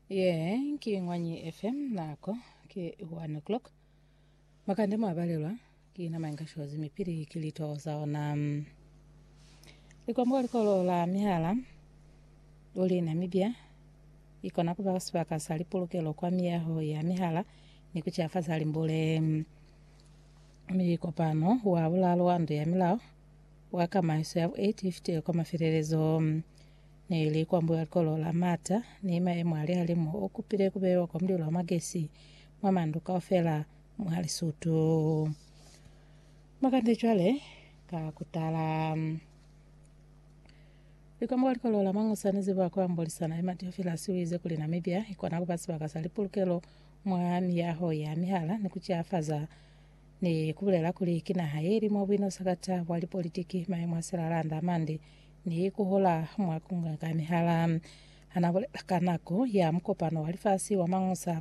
Ye ki Ngwanyi FM nako ke 1 o'clock. Makande mwa balelwa ki nama inga shozi mipili ki lito za ona. Likwambo likolo la mihala uli Namibia ikona kuba sibaka sa lipulukelo kwa miyaho ya mihala ni kuciafaza limbule. Mikopano wa bulalo wa ndu ya milao wa kamaiso ya bu 850 kwa mafelelezo. Ne li kwa Mbuyalikolo la Mata, ni maemo a lihalimu o kupile ku beiwa kwa mulilo wa magesi mwa mandu kaufela mwa Lisutu. Makande cwale ka kutala. Li kwa Mbuyalikolo la Mangusa ni ziba kwa Mbolisana Emma Theophilus uize kuli Namibia ikona kuba sibaka sa lipulukelo mwa miyaho ya mihala ni kuciafaza ni kubulela kuli ki naha yeli mwa buinosa kata bwa lipolitiki, maemo a silalanda amande Ni ku hola mwa ku ngangamihala. Ha n'a bulela ka nako ya mukopano wa lifasi wa Mangusa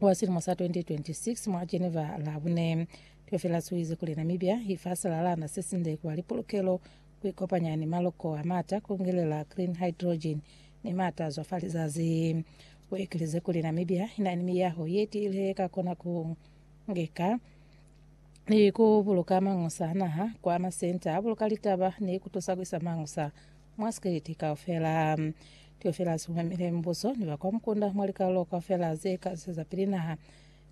wa silimo sa 2026 mwa Geneva Labune, Theofelus u ize kuli Namibia i fa silalana se sinde ku ba li pulukelo, ku ikopanya ni maloko a m'ata, ku ngelela green hydrogen ni m'ata a zwa fa lizazi. U ekelize kuli Namibia i na ni miyaho ye tiile ye ka kona ku ngeka ni ku buluka mangusa a naha kwa masenta a buluka litaba ni ku tusa ku isa mangusa mwa sikiliti kaufela. Teofila si humamile mubuso ni ba kwa mukunda mwa likalulo kaufela ze ka zwezapili naha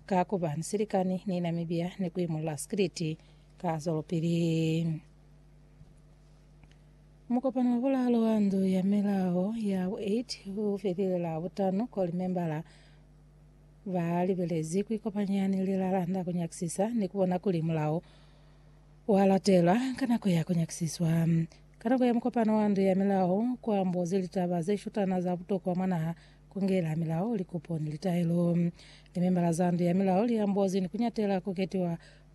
ka ku ba ni silikani ni Namibia ni ku imulula sikiliti ka zwelopili. Mukopano wa bulaalu wa Ndu ya Milao ya bu 8 u felile Labutano ko limembala Ba libelezi ku ikopanya ni lilala nda ku nyakisisa ni ku bona kuli mulao wa latelwa ka nako ya ku nyakisiswa. Ka nako ya mukopano wa Ndu ya Milao, ku ambozi litaba ze shutana za butokwa mwa naha, ku ngela milao, likupo ni litaelo. Limembala za Ndu ya Milao li ambozi ni ku nyatela ku ketiwa